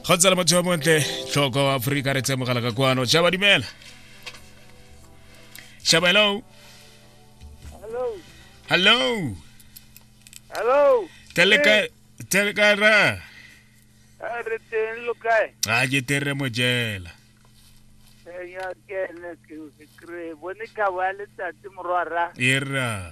go tsala motho yo montle tlhoko wa aforika re tsemogela ka kwano shaba dumela shaba hello Hello. hello Hello. teleka teleka ra Eh, Re teng lo kae? a ke tere mojela Eh, ya kene ke se kry. Bone ka wa letsatsi morwara. e ra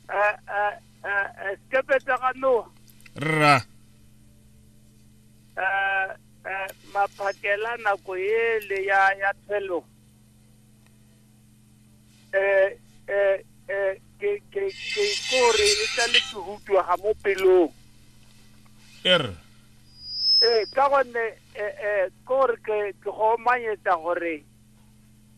Eh, eh, eh, eh, sekepe sa ga noa rra eh, eh, maphakela nako ele ya ya tshelo eh, eh, eh, ke ke ke kore e tla le ke hutwa ga mo pelong e rra ee ka gonne eh, eh, kore ke ke go manyetsa gore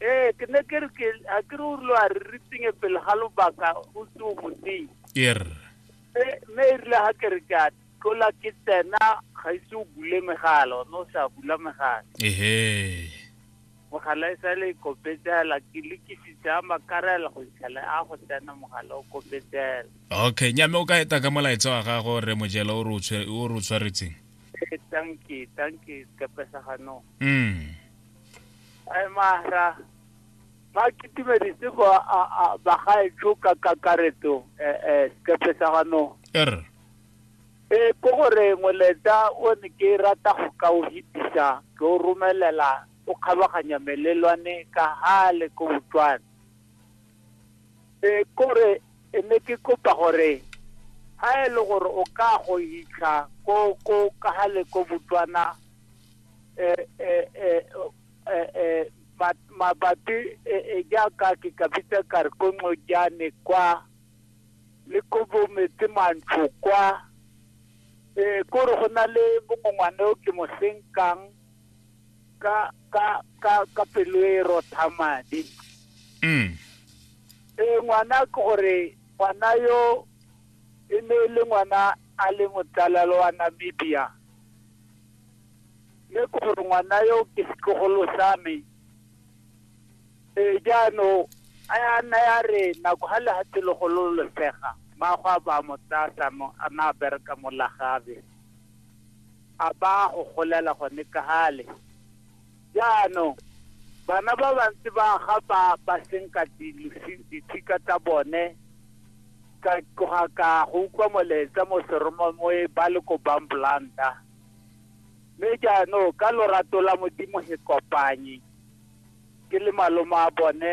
Ee, ke ne ke re ke a ke re o rile wa re re tsinye pele ga lobaka o se o moteng. Ke re. Mme mme e rile ga ke re ke a tlola ke tsena ga ise o bule megala one o sa bula megala. Ehe. Mogala e sa le e kopetsela ke le ke fitlha a makarela go itlhela a go tsena mogala o kopetsela. Okay, nyame o ka eta ka molaetsa wa gago re mojela o re o tshwe- o re o tshwaretseng. Ee, tanki tanki sekepe sa ganong. Mm. mahra ba kitimedise go bagaetsho ka kakaretso eh, eh, sekepe sa ganong er e ko gore ngweleta o ne ke rata go ka o hitisa ke o romelela o kgabaganya melelwane ka gale ko botswana e kore e ne ke kopa gore ga e le gore o ka go hitlha ko ko ka gale ko botswana eh, eh, eh, oh, eh, eh, ma- mabapi eh, eh, jaaka ke ka bitsa kare ko nqojane kwa le ko bometse mantsho kwa eh kore go na le bongongwane o ke mo senkang ka ka ka ka pelo e rotha madi Mm. eh ngwana ke gore ngwana yo e ne e le ngwana a le motsalalo wa Namibia Mme ke gore ngwana yo ke setlogolo sa me ee jaanong a ya nna ya re nako ga lehatshe le gololosega mmaagwe a ba mo tsaya sano a na a bereka mo lagabe a ba go golela gone ka gale Jaanong, bana ba bantsi ba ga ba ba senka dithika tsa bone ka tloga ka go utlwa molaetsa mo seromamoe ba le ko bamblanta mme jaanong ka lorato la modimo he kopanye ke le maloma a bone